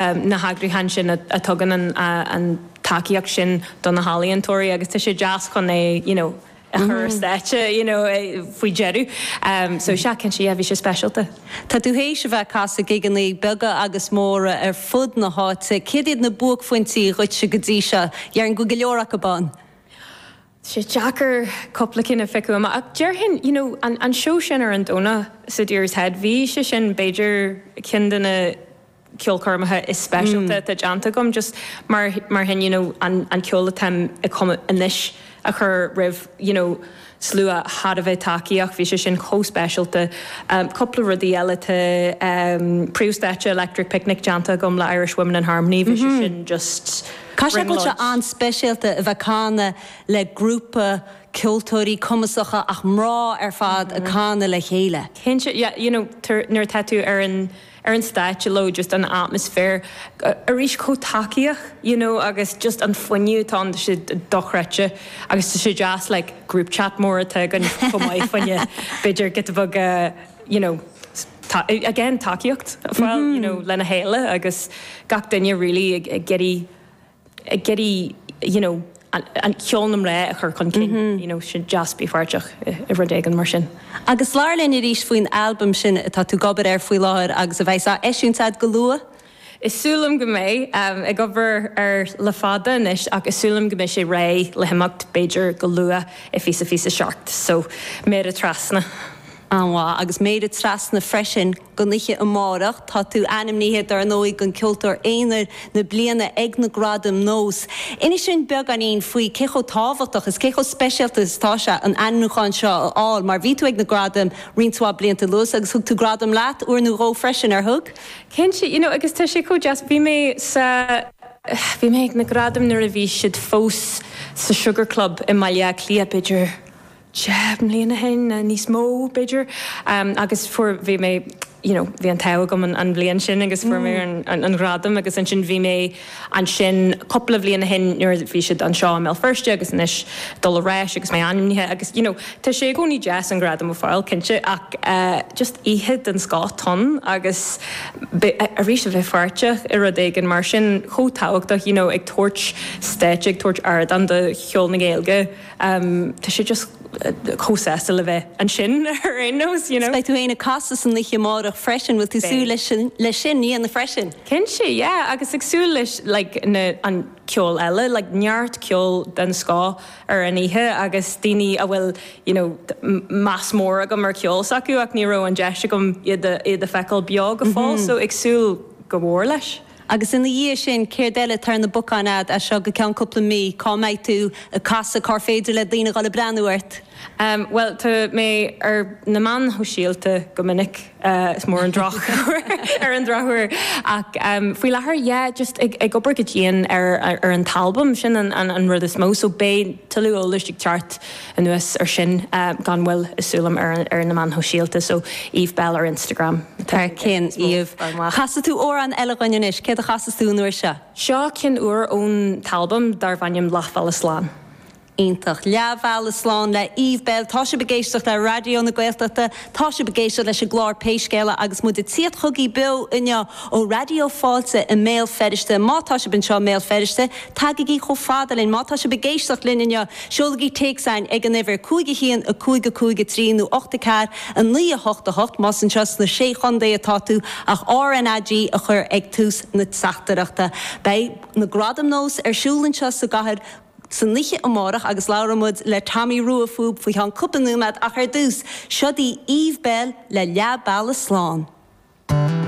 na heagraíochtaí sin a tugann an tacaíocht sin do na healaíontóirí agus tá sé deas chun é you know a chur ar stáitse you know faoi dheireadh so sea cinnte yeah bhí sé speisialta. Tá tú théis a bheith ag casadh gigeanna beaga agus móra ar fud na háite, céard iad na buaicphointí dhuitse go dtí seo? Dheirfinn go go leor acu ann. sé deacair cúpla cinn a phiocadh amach ach déarfainn, you know, an, an seó sin ar an Domhnach sa Deer's Head, bhí sé sin b'fhéidir ceann de na ceolchoirmeacha is speisialta atá déanta agam just mar, mar sin, you know, an, an ceol atáim ag cumadh anois a chur roimh, you know, slua thar a bheith tacaíoch, bhí sé sin chomh speisialta. Cúpla rudaí eile, tá príomhstáitse Electric Picnic déanta agam le Irish Women in Harmony, bhí sé sin just. Caithfidh sé go bhfuil sé an-speisialta a bheith ag canadh le grúpa ceoltóirí cumasacha ach mná ar fad ag canadh le chéile. Cinnte, yeah, you know, nuair atá tú ar an, ar an stáitse leo, just an atmosphere, arís chomh tacaíoch, you know, agus just an fuinneamh atá ann, tá sé dochreidte agus tá sé deas like group chat mór atá againn chomh maith faoi na, b'fhéidir giotaí beaga, you know again tacaíocht a fáil you know lena chéile agus gach duine really ag iarraidh ag iarraidh you know an ceol na mná a chur chun cinn you know is deas a bheith páirteach i rud éigin mar sin. Agus labhair linn arís faoin albam sin atá tú ag obair air faoi láthair agus a bheas á eisiúint agat go luath. Tá súil agam go mbeidh. Ag obair air le fada anois ach tá súil agam go mbeidh sé réidh le himeacht, b'fhéidir go luath i bhfiche fiche seacht. So, méara trasna. An-mhaith. Agus méara trasna freisin don oiche amárach. Tá tú ainmnithe, dar ndóigh, don Ceoltóir Aonair na Bliana ag na Gradaim NÓS. Inis linn beagáinín faoi cé chomh tábhachtach is cé chomh speisialta is atá sé an ainmniúchán seo a fháil mar bhí tú ag na Gradaim roinnt mhaith blianta anuas agus thug tú gradam leat uair nó dhó freisin, ar thug? Cinnte, you know, agus tá sé chomh deas, bhí mé sa, bhí mé ag na gradaim nuair a bhí siad fós sa Sugar Club i mBaile Átha Cliath, b'fhéidir deich mbliana ó shin nó níos mó, b'fhéidir, agus fuair, bhí mé, you know, bhí an t-ádh agam an bhliain sin agus fuair mé an, an, an ghradam agus ansin bhí mé. ansin cúpla bliain ó shin nuair a bhí siad anseo i mBéal Feirste agus anois dul ar ais agus mé ainmnithe agus you know tá sé i gcónaí deas an gradam a fáil cinnte ach just oíche den scoth atá ann agus arís a bheith páirteach i rud éigin mar sin chomh tábhachtach you know ag tabhairt stáitse ag tabhairt ardán do cheol na Gaeilge tá sé just chomh sásta le bheith ansin ar aon nós you know. Beidh tú fhéin ag casadh san oíche amárach freisin, bhfuil tú ag súil leis sin a dhéanamh freisin? Cinnte, yeah, agus ag súil leis like na, an ceol eile, like neart ceol den scoth ar an oíche agus daoine a bhfuil you know meas mór agam ar cheol s'acu ach ní raibh an deis agam iad a, iad a feiceáil beo go fóill so ag súil go mhór leis. Agus ina dhiaidh sin, céard eile atá ar na bacáin agat as seo go ceann cúpla mí? Cá mbeidh tú ag casadh? Cár féidir le daoine dhul ag breathnú ort? Bhuel, tá mé ar na meáin shóisialta go minic, is mór an, ar an drochuair, ach faoi láthair, yeah, just ag obair go dian ar an t-albam, sin an rud is mó, so beidh tuilleadh eolais ag teacht anuas ar sin gan mhoill is súil liom ar na meáin shóisialta, so Eve Belle ar Instagram. Thar cionn, Eve. Casfaidh tú amhrán eile dhúinn anois, céard a chasfas tú an uair seo? Seo ceann úr ón t-albam darbh ainm Leathbhealaigh Slán. Iontach. Leath bhealaigh slán le Eve Belle, tá sibh ag éisteacht le Raidió na Gaeltachta, tá sibh ag éisteacht leis an gclár Pé Scéal agus muid ag tíocht chugaibh beo inniu ó Raidió Fáilte i mBéal Feirste. Má tá sibh anseo i mBéal Feirste, tagaigí chomh fada linn. Má tá sibh ag éisteacht linn inniu, seolaigí téacsáin ag an uimhir, 51 55 3 nó 8 4 9 8 8 más anseo sna Sé Chontae atá tú ach RnaG a chur ag tús na teachtaireachta. Beidh na Gradaim Nós ar siúl anseo sa gcathair san oíche amárach agus labhróidh muid le Tomaí Rua fúb faoi cheann cúpla nóiméad ach ar dtús, seod í Eve Belle le Leath Bealaigh Slán.